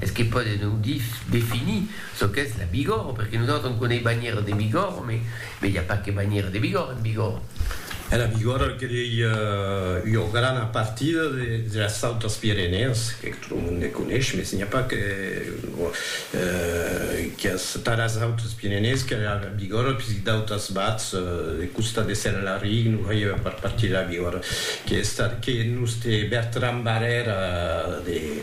Es que pòde non definir çò qu'es la Bigòrre, perque nosautres on coneis banhièra de Bigòrre, me i a pas que banhièra de Bigòrre en Bigòrre. E la Bigòrre que ei ua grana partida de las Autes Pirenèas, que tot lo monde coneis, mes n'i a pas que qu'es tà las Autes Pirenèas que la Bigòrre, puisque d'autas bats de costat de Senlaric non faievan pas partir de la Bigòrre, que es tà que nos te Bertran Barrèra de.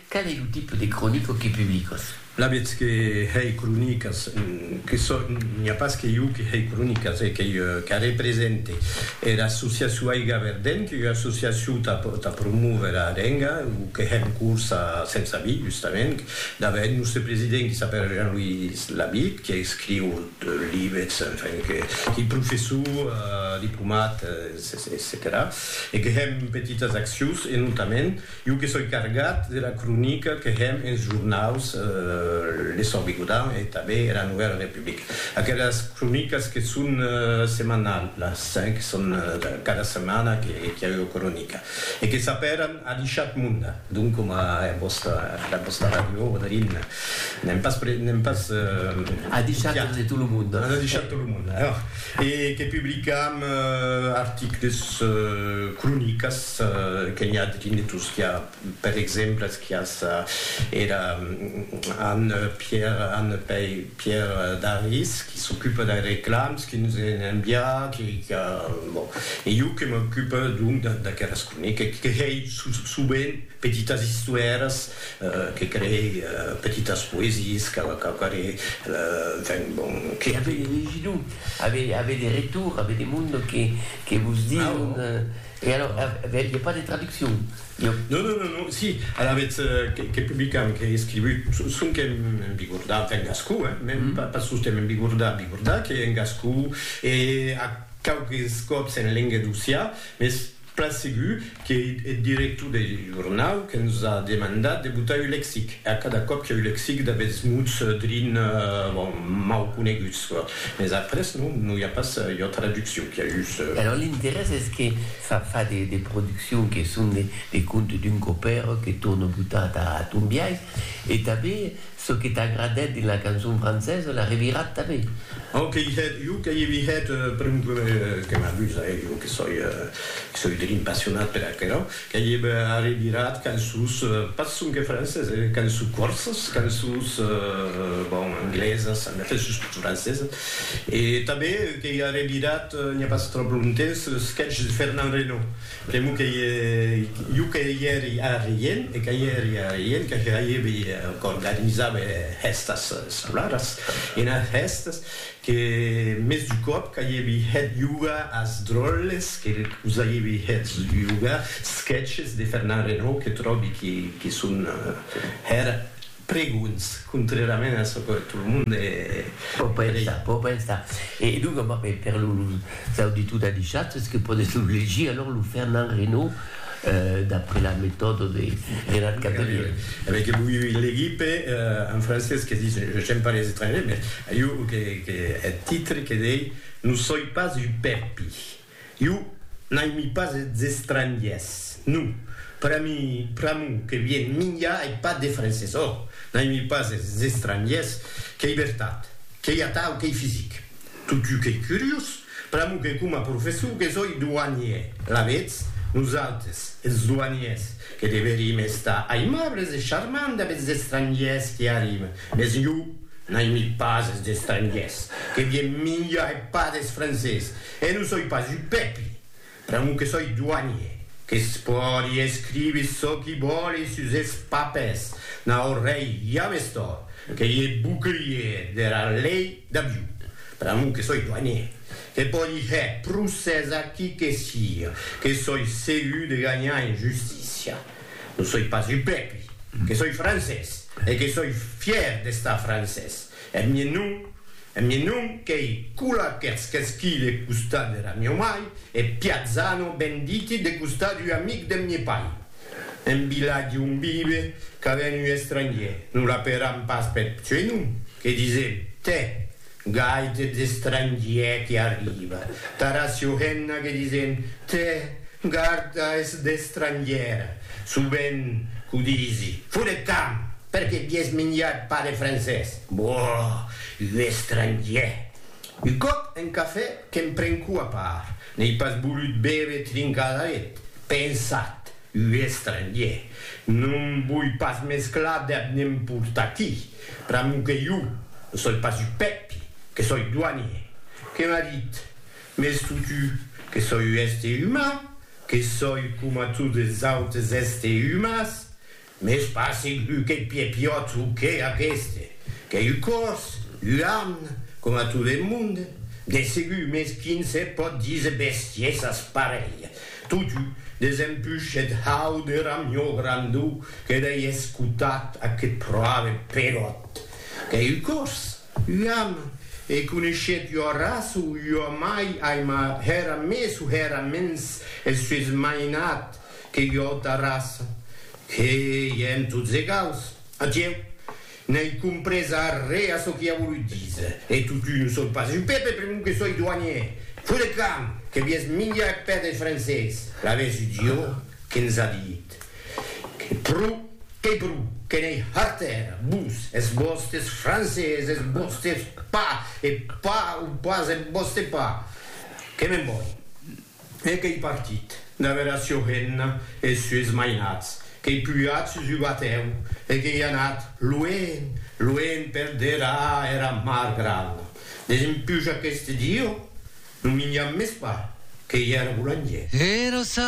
Qual es lo tipe de cronica que publicas? La vètz que hèi cronicas que sò, n'i a pas que iu que hèi cronicas e qu'ei que represente era associacion Aiga Verdent, qu'ei ua associacion tà promóver era lenga, o que hè en corsa sens avis, justament, dava eth nòste president qui s'apèra Jean-Louis Labitte, qui escriu libets, enfin, qu'ei professor, diplomat, etcetèra, e que hèm petitas accions e notament, Jo que soi cargat de la cronica que hèm enes jornaus Le Sòrt Bigodan e tanben era Novèla Republica. Aquelas cronicas que son semanalhas, que son cada setmana que i a ua cronica e que s'apèran A l'Ishat Munda, donc coma era vòsta, era vòsta ràdio Odrin, n'èm pas, n'èm pas A l'Ishat de tot lo monde. A l'Ishat de tot lo monde, e que publicam articles, cronicas, que n'i a de dinetos qu'a per exemples quias era Anne Pierre Anne Pei Pierre Daris qui s'ocupe dei reclams qui nos en envia qui qu'a bon e jo que m'ocupe donc d'aqueras croniques que hei sovent petitas istoères que crei petitas poesies qu'a qu'a quare enfin bon que avei legido avei avei de retour avei de monde que que vos dion E alors, aviatz pas de traduccion? Non, non, non, non, si, alavetz que publicam, qu'ei escrivut, sonque en bigordà, enfin en gascon, hein, mèm pas sosten en bigordà, bigordà, qu'ei en gascon, e a quauques còps en lenga d'Ossià, mès plan segur qu'ei eth director deth jornau que nos a demandat de botar un lexic, e a cada còp que'u lexic d'aguests mots drin, bon, mau coneguts. Mes après non, non i a pas ua traduccion, qu'i a just. Alors l'interès es que fa fa de de produccion que son de de contes d'un copèr que torne botar ta ton biais e tanben çò que t'agradèt dins la cançon francesa la revirat tanben. Au que i hèt, jo que i vi hèt, per exemple, que m'amusa, eh, jo que soi, que soi drin passionat per aquerò. Qu'ei eb arribirat qu'en sus, pas sonque francés, eh, qu'en su corsas, qu'en sus, bon, anglesas, en efèth sus tot francesas. E tanben qu'ei arribirat, n'i a pas tròp longtemps, le sketch de Fernand Reynaud, pr'amor qu'ei jo que i èri arrien, e que i èri arrien, que hèibi, qu'organizava hèstas escolaras, ena hèstas, Que mès du còp qu'aievi hèt yoga as dròlles que vos aievi hèt yoga, sketches de Fernand Reynaud que tròbi que son hèr pregonhs, contrèrament a çò que tot lo monde pò pensar, pò pensar. E donc, per los auditors d'Adishat, es que pòdetz lo legir, alòr, lo Fernand Reynaud. d'après la metòda de Gérard Cavelier. Avèc que voi legir per un francés que ditz j'aime pas les étrangers, mès jo que eth titre que dei non soi pas un pèpi. Jo n'aimi pas es estrangiers, non, pera mi pr'amor que vien minjar eth pat des francés. Ò, n'aimi pas es estrangiers, qu'ei vertat, qu'ei atau, qu'ei fisic. Totjou qu'ei curiós, pr'amor que coma professor que soi douanier, alavetz, nosautres, es douaniers, que deverim estar aimables e charmants dab es estrangiers qui arriben, mes jo n'aimi pas es estrangiers, que vien minjar e pas des francés, e non soi pas un pèpi! Pr'amor que soi doanier, que's pòdi escriver çò qui vòli sus es papers, naut rei ja m'es tòrt, que i e bouclier dera lei d'avion. Pr'amor que soi doanier, que pòdi hèr procès a qui que siga, que soi segur de ganhar en justícia. Non soi pas un pèpi, que soi francés e que soi fièr d'estar francés. Eth mien non, eth mien non qu'ei Cula qu'ers qu'esquí de costat dera mieu mai, e Piazzano ben diti de costat ua amic deth mie pair. En vilatge on vive qu'a ben ua estrangier, non l'aperam pas peth suei nom, que disem, tè, gai t'eth estrangier que arriba, tara sio hemna que disem, tè, garda eth estrangier, sovent qu'o disi, fut eth camp! Per que vies minjat pas de francés? Boh! Un estrangier! Un còp en cafè que'm pren cou a part, n'ei pas volut bève trincadaret, pensat, un estrangier! Non voi pas mesclar dab n'emportaqui! Pr'amor que jo ne soi pas un pèpi, que soi doanier! Que m'a dit, Mès totu, que soi un èster uman, que soi coma totes es autes èster umans, Mès pas segur qu'eth piè piòt o qué aqueste, qu'ei un còrs, un arn, coma tot eth monde, de segur, mès quin se pòt díser bestiesas parelha. Totú, desempuish eth hau de ramió grandó que dei escotat aqueth pròve peròt, qu'ei un còrs, un arn, e coneishèt ua raça o ua mai aima hèra mès o hèra mens eth sues mainat, Que jo ta raça, que ièm tots egaus. Atieu, n'ai comprés arré a çò qu'i a volut díser. E totun o soi pas un pèpe pr'amor que soi doanièr. Fo de camp, que vies minjar eth pè deth francés. Laves un diò que'ns a dit, que pro, qu'ei pro, que n'ei hartèra, vos, es vòstes francés, es vòstes pa, e pa o pas eth vòste pa. Que me'n voi. E qu'ei partit, damb era sua hemna e es sues mainats, qu'ei pujat sus un batèu e qu'ei anat luenh, luenh per derar era mar grana, desempuja qu'este diu, non minjam mès pas, qu'ei era bolangièr. Era